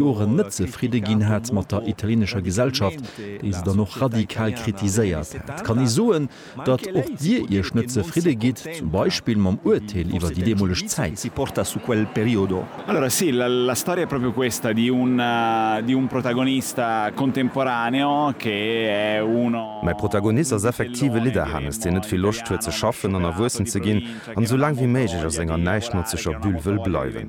Joren net zefridde ginn hat mat der italienescher Gesellschaft, déi se dann och radikal kritiséiert hat, kann ee soen, datt och Dir Iech net zefridde gitt, zum Beispill mam Urteel iwwer déi deemoleg Zäit. Mäi Protagonist ass effektiv e Lidderhannes, deen net vill Loscht huet ze schaffen an erwuessen ze ginn an esou laang wéi méiglech a senger Näischt-Notzeger-Bulle wëll bleiwen.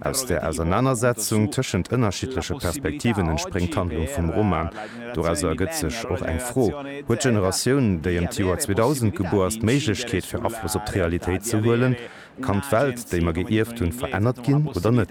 Aus der Ausernanersetzung tëschent ënnerschiddleche Perspektiven entspréngt d'Handlung vum Roman. Dorausser ergëtt sech och eng Fro, Huet d'Generatioun, déi ëm d'Joer 2000 gebuer ass, d'Méiglechkeet, fir Afloss op d'Realitéit ze huelen? Kann d'Welt, déi mer geierft hunn, verännert ginn oder net?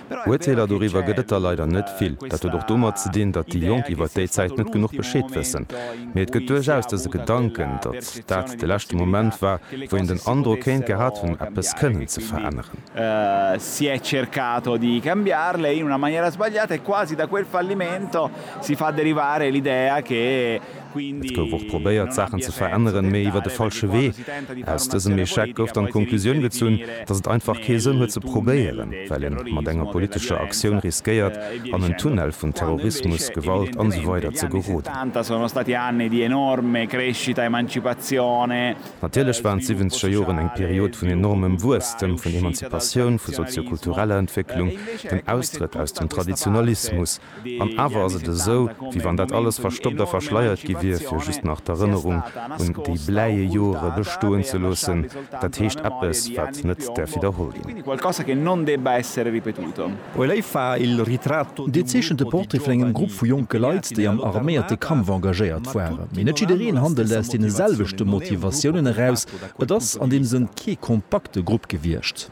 Uerteeler doriwwer gëtt et der leider net vill. Dat huet och domat ze dinn, datt déi Jonk iwwert déi Zäit net genuch Bescheed wëssen. Mee et gëtt duerchaus dëse Gedanken, datt dat de leschte Moment war, wou een den Androck kéint gehat hunn, eppes kënnen ze veränneren. Et gouf och probéiert, d'Saachen ze veränneren, mee iwwer de falsche Wee. Aus dësem Echec gouf dann d'Konklusioun gezunn, datt et einfach kee Sënn huet ze probéieren, well ee mat enger politescher Aktioun riskéiert, an en Tunnel vun Terrorismus, Gewalt an esou weider ze geroden. Natierlech waren d'Siwwenzeger Joren eng Period vun enormem Wuesstem, vun Emanzipatioun, vu sozio-kultureller Entwécklung, dem Austrëtt aus dem Traditionalismus, An awer ass et esou, wéi wann dat alles verstoppt a verschleiert gi wier, fir just nach d'Erënnerung un déi bläie Jore bestoen ze loossen, dat heescht eppes, wat net däerf widderholl ginn. Dee zeechent de Portrait vun engem Grupp vu jonke Leit, déi am arméierte Kampf engagéiert waren. Mee net jiddereen handelt aus deene selwechte Motivatiounen eraus. Et ass an deem Sënn kee kompakte Grupp gewiescht.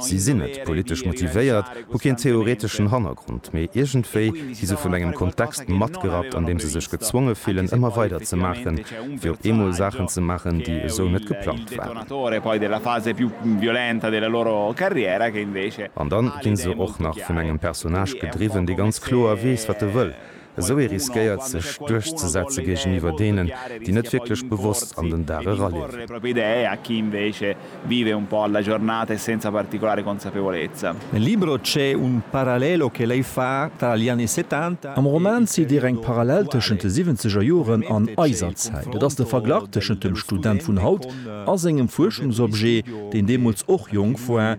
Si sinn net politesch motivéiert, hu keen theoreteschen Hannergrond, mee iergendwéi gi se vun engem Kontext matgerappt, an deem se sech gezwonge fillen, ëmmer weider ze maachen, fir op eemol Saachen ze maachen, déi esou net geplangt waren. An dann ginn se och nach vun engem Personnage gedriwwen, dee ganz kloer weess, wat e wëll, Esou ee riskéiert sech duerchzesetze géigeniwwer deenen, déi net wierklech bewosst an den Dag eraliewen. Nel libro c'è un parallelo che lei fa tra gli anni settanta e Am Roman zitt Dir eng Parallel tëschent de siwwenzeger Joren an eiser Zäit. Et ass de Verglach tëschent dem Student vun haut a sengem Fuerschungsobjet, deen deemools och jonk war,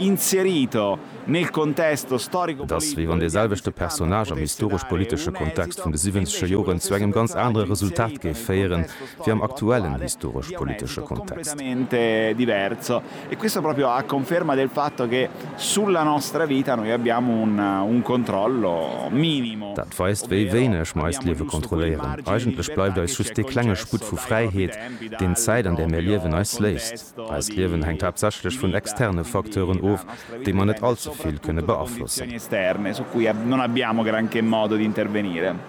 Et ass, wéi wann dee selwechte Personnage am historesch-politesche Kontext vun de siwwenzege Joren zu engem ganz anere Resultat géif féieren, wéi am aktuellen historesch-politesche Kontext. Dat weist, wéi wéineg mer eist Liewe kontrolléieren. Eigentlech bleift eis just dee klenge Sputt vu Fräiheet, deen d'Zäit, an där mir liewen, eis léisst. Eist Liewen hänkt haaptsächlech vun externe Facteuren of, déi mer net all ze vill kënne beaflossen.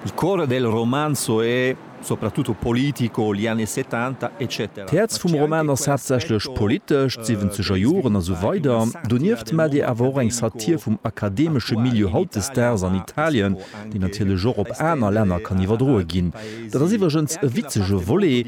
Il cuore del romanzo è soprattutto politico, gli anni settanta, eccetera. D'Häerz vum Roman ass haaptsächlech politesch, d'siwwenzeger Joren a sou weider. Donieft maacht ee awer och eng Satir vum akademesche Milieu hautdesdaags an Italien, déi natierlech och op aner Länner kann iwwerdroe ginn. Dat ass iwwregens e witzege Volet,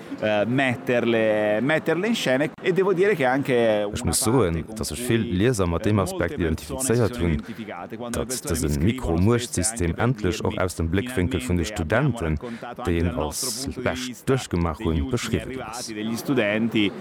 Ech muss soen, datt sech vill Lieser mat deem Aspekt identifizéiert hunn, datt dëse Mikro-Muechtsystem endlech och aus dem Bléckwénkel vun de Studenten, déi een als bescht duerchgemaach hunn, beschriwwen ass.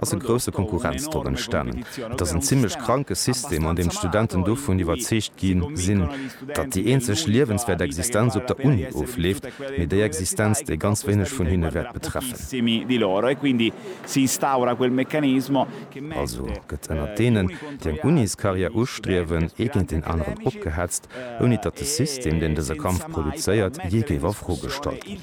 ass e grousse Konkurrenzdrock entstanen. Et ass en zimlech kranke System, an deem d'Studenten dovun iwwerzeegt gi sinn, datt déi eenzeg liewenswäert Existenz op der Uni ofleeft, mee déi Existenz, déi ganz wéineg vun hinne wäert betreffen. Also gëtt ënnert deenen, déi eng Uniscarrière ustriewen, ee géint deen aneren opgehetzt, ouni datt de System, deen dëse Kampf produzéiert, jee géif a Fro gestallt ginn.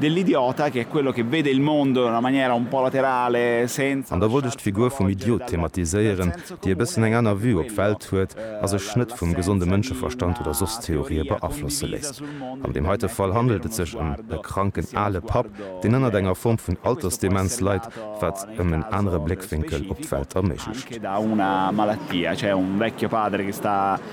Dell'idiota, che è quello che vede il mondo in una maniera un po' laterale, senza. An da wollt ech d'Figur vum Idiot thematiséieren, déi e bëssen eng aner Vue op d'Welt huet a sech net vum gesonde Mënscheverstand oder soss Theorië beaflosse léisst. An deem heite Fall handelt et sech ëm e kranken ale Papp, deen ënnert enger Form vun Altersdemenz leit, wat ëm en anere Bléckwénkel op d'Welt erméiglecht.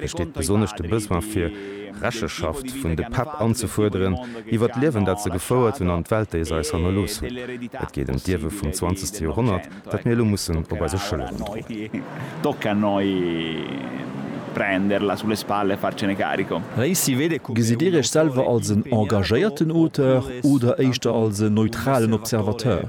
Besteet besonnesch de Besoin fir Recheschaft vun de Päpp anzefuerderen iwwer d'Liewen dat se gefouert hunn an d'Welt déi se eis hannerlooss hunn? Et geet ëm d'Ierwe vum zwanzegste Joerhonnert dat mir elo mussen op eise Schëlleren droen. Gesitt Dir Iech selwer als en engagéierten Auteur oder éischter als en neutralen Observateur?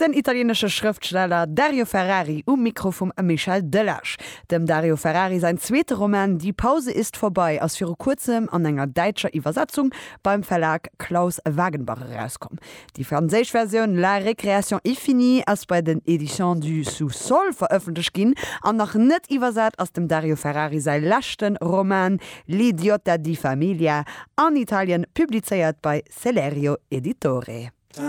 Den italienesche Schrëftsteller Dario Ferrari um Mikro vum Michel Delage. Dem Dario Ferrari säin zweete Roman Die Pause ist vorbei ass viru kuerzem an enger däitscher Iwwersetzung beim Verlag Claus Wagenbach erauskomm. Déi franséisch Versioun La récréation est finie ass bei den Editions du Sous-sol verëffentlecht ginn an nach net iwwersat ass dem Dario Ferrari säi leschte Roman L'idiota di famiglia an Italien, publizéiert bei Celerio Editore.